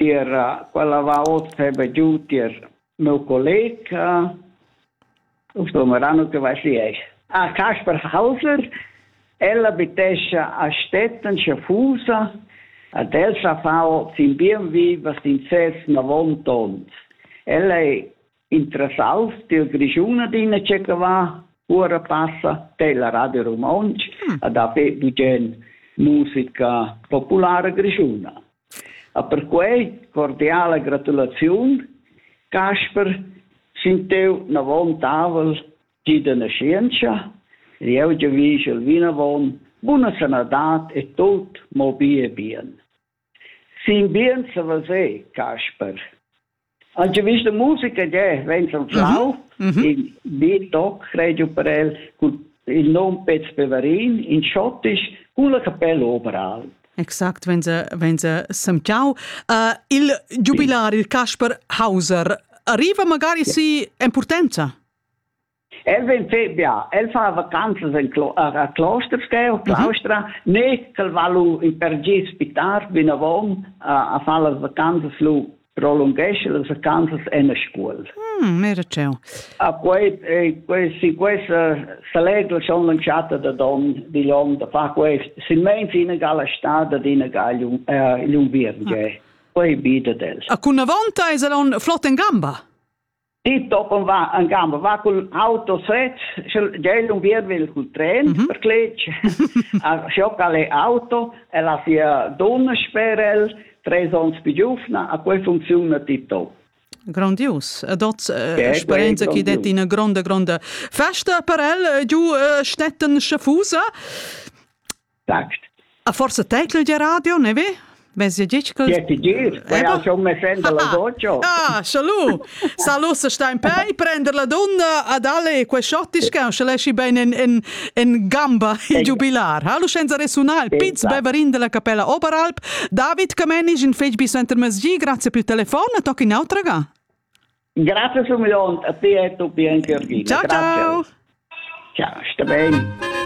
Tier quella va ot feba giu tier meu colleg, sto meran ute vai schi esch. Ah, Kasper Hauser, el abitescha a Stetten Schaffusa, ad el sa fau sin bien vivas in ses navon tont. El ei Interessals dil Grischun adina tschecca va, ora passa tella Radio Romontsch mm. ad haver bugen musica populara grischuna. A per quei cordiale gratulaziun, Casper, sin teu navon tavel, gida na scienza, lieu de vigel vinavon, buna sanadat e tot mo bie bien. Siin bien sa veser, Casper. Anche vista musica è vens al flau, in beat toc radio per el, cun il nom Pez Peverin, in schottisch, cun la capella overall. Exact, wenn sie, wenn sie semtau. Uh, il giubilar, il Casper Hauser, arriva magari si en potenza? El vegn bia, el fa vacanzas en Clo a Kloster sco Claustra, mhm. ne ch'el va lu in per gi spitar vinavon a, a fa las vacanzas lu prolunghesce las vacanzas en a scuol. Mm, mira ceu. A quei e quei si questa selegla schon lanciata da don di l'om da fa quest silmeins ina gala stada d'ina galium eh l'unviern ah. quei bi da dels. A cun avonta es el on flott en gamba. Die toppen va en gamma va col auto sec gel un via vel col tren mm -hmm. per cletg a sciocca le auto e la sia donna sperel tres ons più giuvna a quei funziona tito Grandius. Ed ot eh, sperenza chi det ina gronda gronda festa per el eh, giu eh, stettan schafusa. text. A forse teitl de radio, ne ve? Vezi dici che Che ti dir? Vai a schon me senda la voce. Ah, salut. Salut se sta in pei, prender la donna ad alle que schottischka, se lesci ben in in in gamba il giubilar. Hallo senza resunare il piz beverin della capella Oberalp. David Camenisch in fetg bis enter mesgi, grazie per il telefono, tocchi in autra ga. Grazie su milion a te e tu Bianca Ciao ciao. Ciao, sta bene.